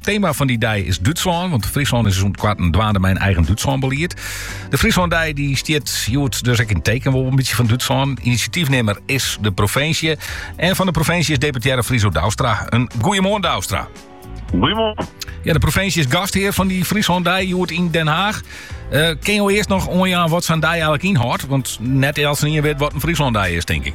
Tema fan dy dei is Dútslân, want Fryslân is sûnt koarten dwaande mei in eigen Dútslân-belied. De Fryslân-dei dy stiet hjoed dus ek yn teken wol in bytsje fan Dútslân. Inisjatyfnimmer is de provinsje. En fan de provinsje is deputearre Friso Douwstra. In goeiemoarn, Douwstra. Goeiemoarn. Ja, de provinsje is gasthear fan dy Fryslân-dei hjoed yn Den Haag. Uh, eh, kinne jo earst noch oanjaan wat sa'n dei eigenlik ynhâldt? Want net elkenien wit wat in Fryslân-dei is, tink ik.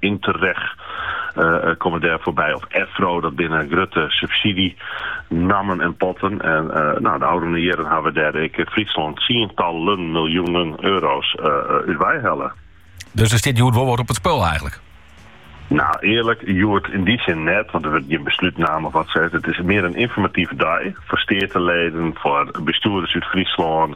Interreg komme dêr foarby. Of EFRO, dat binne grutte subsydzjenammen en potten. En no, de ôfrûne jierren hawwe dêr ek Fryslân tsientallen miljoenen euro's út wei helle. Dus der stiet hjoed wol wat op it spul eigenlik? No, earlik, hjoed, yn dy sin net, want der wurdt gjin beslút nommen of wat ek. It is mear in ynformative dei foar steateleden, foar bestjoerders út Fryslân,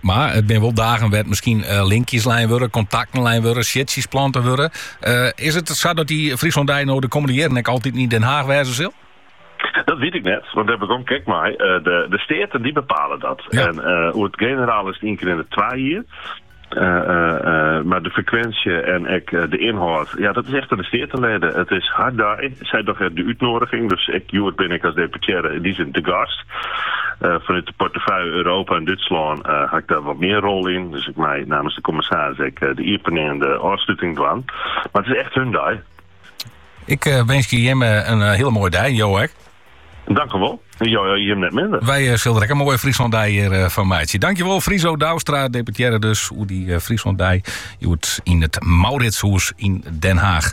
Mar it binne wol dagen wêr't miskien eh, linkjes lein wurde, kontakten lein wurde, siedsjes plante wurde. Eh, is it sa dat dy Fryslân-dei no de kommende jierren ek altyd yn Den Haag wêze sil? Dat wit ik net, want dêr haw ik ek, kyk mar. Eh, de, de Steaten dy bepale dat. En uh, oer it generaal is it ien kear yn de twa jier. Eh, eh, eh, mar de frekwinsje en ek de ynhâld, ja, dat is echt oan de steateleden. It is har dei. Sy dogge de útnodiging, dus ek hjoed bin ik als deputearre yn dy sin te gast. Fanút de portefúlje Europa en Dútslân haw ik der wat mear rol yn. Dus ik mei namens de kommissaris ek de iepening en de ôfsluting dwaan. Mar it is echt hun dei. Ik eh, winskje jim eh, in eh, hiele moaie dei, jo ek. Dankewol. Jo, jim net minder. Wy sille der in moaie Fryslân-dei hjir fan meitsje. Dankjewol Friso Douwstra, deputearre dus, oer dy Fryslân-dei hjoed yn it Mauritshûs yn Den Haag.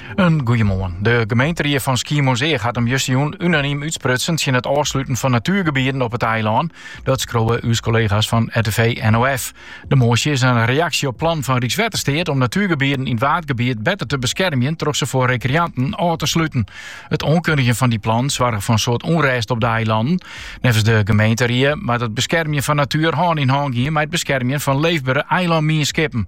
In goeiemoarn. De gemeenteried fan Skiermûntseach hat him justjûn unaniem útsprutsen tsjin it ôfsluten fan natuergebieden op it eilân. Dat skriuwe ús kollega's fan RTV NOF. De moasje is in reaksje op plannen fan Rykswettersteat om natuergebieden yn it Waadgebiet better te beskermjen troch se foar rekreanten ôf te sluten. It oankundigjen fan dy plannen soarge foar in soad ûnrêst op de eilannen. Neffens de gemeenteried moat it beskermjen fan natuer hân yn hân gean mei it beskermjen fan leefbere eilânmienskippen.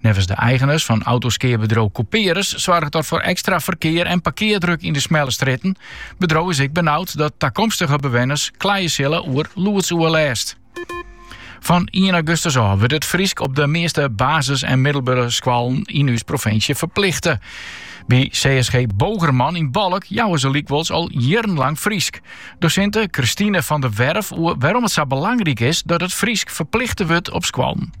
Neffens de eigeners fan autoskeabedriuw Couperus soarget dat foar ekstra ferkear en parkeardruk yn de smelle strjitten. Bedriuw is ek benaud dat takomstige bewenners kleie sille oer lûdsoerlêst. Fan ien augustus ôf wurdt it Frysk op de measte basis en middelbere skoallen yn ús provinsje ferplichte. By CSG Bogerman yn Balk jouwe se lykwols al jierrenlang Frysk. Dosinte Christine van der Werf oer wêrom it sa belangryk is dat it Frysk ferplichte wurdt op skoallen.